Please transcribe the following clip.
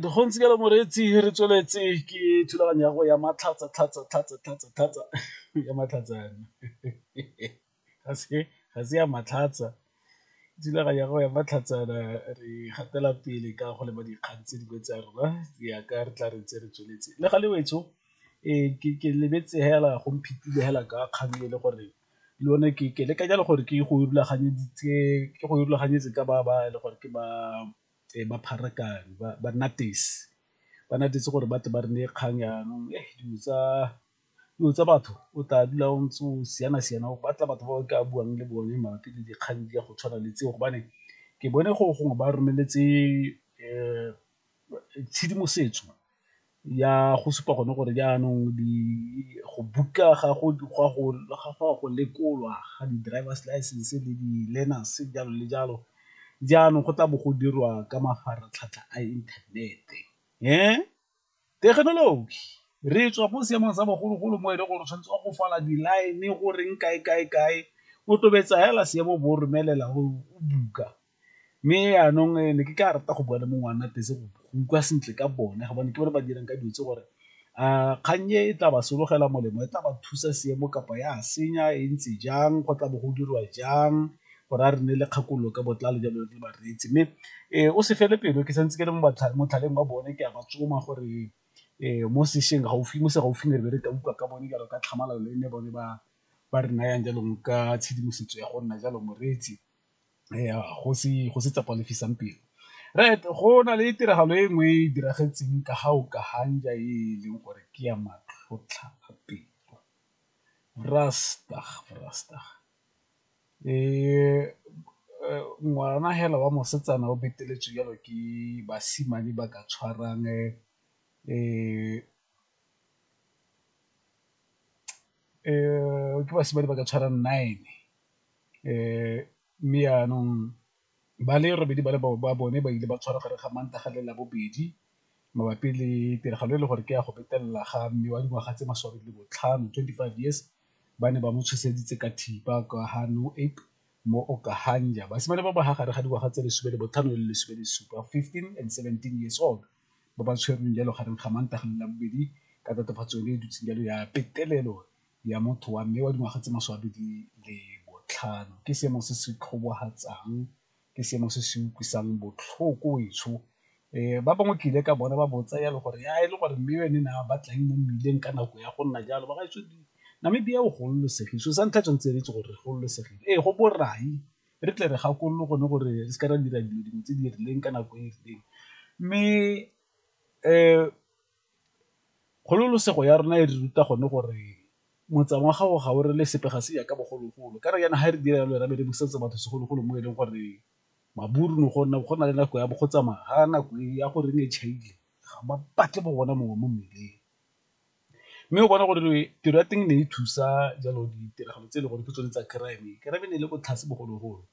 Dikgontshi ka moreetsi re tsweletse ke thulaganyo ya go ya matlhatsa tlhatsa tlhatsa tlhatsa tlhatsa ya matlhatsa yana ga se ga se ya matlhatsa thulaganyo ya go ya matlhatsa yana re gatela pele ka go leba dikgang tse dingwe tsa rona jaaka re tla re ntse re tsweletse le ga le wetsho ke lebetse fela go mphetile fela ka kgang e le gore. le yone ke ke leka jalo gore ke go rulaganyeditse ke go rulaganyetse ka ba ba e le gore ke ba ba pharakano ba ba nnatefo gore batle ba re neye kgang yanong dilo tsa dilo tsa batho o tla dula o ntse o siana siana o batla batho ba o ka buang le bone mabapi le dikgang di ya go tshwana le tseo gobane ke bone gore gongwe ba romeletse . tshedimosetso ya go supa gone gore jaanong go book-a ga go go lekolwa ga di-drivers license le di-learners jalo le jalo, jaanong go tla bo go dirwa ka mafaratlhatlha a inthanete thekenoloji re tswa ko seemong sa bogologolo mo e leng gore o tshwanetse wa go fola di-line goreng kae kae kae o tobetsa fela seemo bo go romelela o book-a. Mme jaanong ne ke ka rata go bua le mongwe wa nna teng go utlwa sentle ka bone gobane ke bone ba dirang ka dilo tse gore a kgang e e tla ba sologela molemo e tla ba thusa seemo kapa ya senya e ntse jang go tla bo go dirwa jang gore a re nne le kgakololo ka botlalo jalo le bareetsi. Mme o se fele pelo ke santse ke le motlhaleng wa bone ke a ba tsoma gore mo sešweng gaufi mo se gaufi ne re be re ka utlwa ka bone jalo ka tlhamalalo le ne bone ba ba re nayang jalo ka tshedimosetso ya go nna jalo moreetsi. go se tsa pelo right go na le tiragalo e nngwe e diragetseng ka ga o ka e leng gore ke ya matlhotlhapelo ngwana hela wa mosetsana o beteletswe jalo ke basimane ba ka tshwarang ke basimane ba ka tshwarang nine. Mme jaanong ba le robedi ba bone ba ile ba tshwarwa gare ga Mantaga le Labobedi mabapi le tiragalo e le gore ke ya go betelela ga mme wa dingwaga tse masome a mabedi le botlhano, twenty five years, ba ne ba mo tshoseditse ka thipa kwa ga mo Okahanja. Basimane ba ba fa gare ga dingwaga tse lesome le botlhano le lesome le supa, fifteen and seventeen years old, ba ba tshwerweng jalo gareng ga Mantaga le Labobedi ka tatofatso yone e dutseng jalo ya petelelo. ya motho wa mme wa dingwaga tse masome a mabedi le botlhano ke seemo se se tlhobahatsang, ke seemo se se utlwisang botlhoko etsho. Ba bangwe ke ile ka bona ba botsa jalo gore ha e le gore mme ene ne a batla eng mo mmileng ka nako ya go nna jalo, ba gaetsho Namibia o gololosegile so sa ntlha tshwanetse re itse gore re gololosegile, ee go borai re tle re gakolole gone gore re seke ra dira dilo dingwe tse di rileng ka nako e e rileng mme Kgololosego ya rona e re ruta gone gore motsa wa gago ga o re le sepe ga se jaaka bogologolo, ka re jaana ga re dira jalo ra be re busetsa batho segologolo mo e leng gore maburu ne go nna go na le nako ya bo go tsamaya ga nako e ya gore e chaile ga ba batle bo gona mongwe mo mmileng. Mme o bona gore tiro ya teng ne e thusa jalo ditiragalo tse e le gore ke tsone tsa crime, crime e ne e le ko tlase bogologolo.